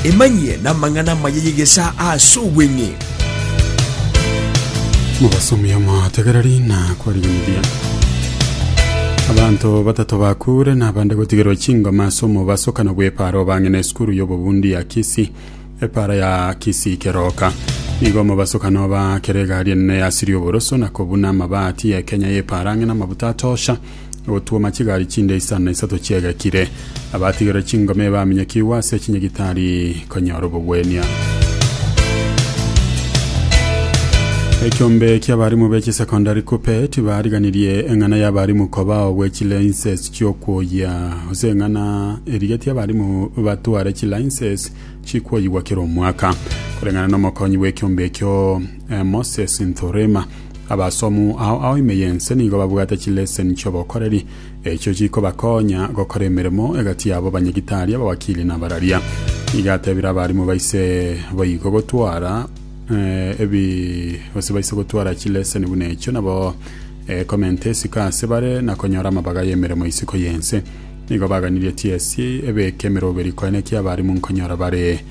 Emanyie namang'ana amaya y'egesaa as'obweng'e. Mobasomi omotegereri na kwariganiria. Abanto batato bakure na abande gotigerwa chingoma ase omobaso kana bw'epara obang'ina esukuru y'obobundi ya Kisii epara ya Kisii keroka. Nigo omobaso kana oba kera egari enene yasiria oboroso na kobuna amabati ya Kenya y'epara ang'e na amabuta atosha. ogotwoma chigari chinde isano na isato chiegekire. Abatigerwe chingoma ebaminyekigwe ase echinya gitari konyora obogwenia. Ekiombe ki'abarimu be chisekondari kupe tibariganirie eng'ana y'abarimu kobao gwe chilainses chi'okwoyia gose eng'ana erigetie abarimu batware chilainses chikwoyigwa kera omwaka koreng'ana n'omokonyi bw'ekiombe ekio Moses Nthurima. Abasomu ao ao ime y'ense nigo babwate chileseni chi'obokoreri, echio chikobakonya gokora emeremo egati yabo banyagitari, abawakili, na abararia. Iga atebire abarimu baise boigo gotwara eh, ebi gose baise gotwara chileseni buna echio nabo eh, komenta esiko ase bare na konyora amabaga y'emeremo isiko y'ense. Nigo baganirie TSC ebeke emeroberi koenekia abarimu nkonyora bare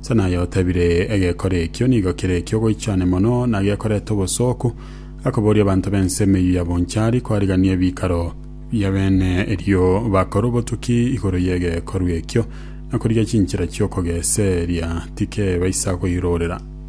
Ase naye otebire, Egekore ekio nigo kere eki'ogoichania mono, na gekoreta obosooku, akoboria abanto b'ense emeyio ya bonchari koarigania ebikaro bi'abene, erio bakore obotuki igoro y'egekorwa ekio, na korigia chinchera chi'okogeseria tikebaisa koirorera.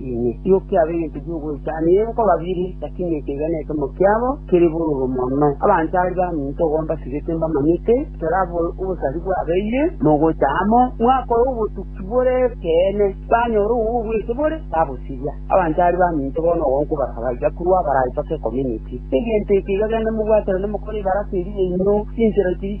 Inwe timokia aba egento gi'ogoichania enko babiri, lakini ekeiga na ekemomo kiabo kere bororo mono. Abanto aria baminto igo mbasibete mbamanyete, toraba obosari bwabeire, mogocha amo, mwakora obotuki bore ekeene, banyora obo bwete bore, babosiria. Abanto aria baminto bono igo nkobaragareria korwa abaraitoke Ekomioniti. Egento ekeiga gende mobwaterane mokore ebaraka eria yaino, chinchera chiria.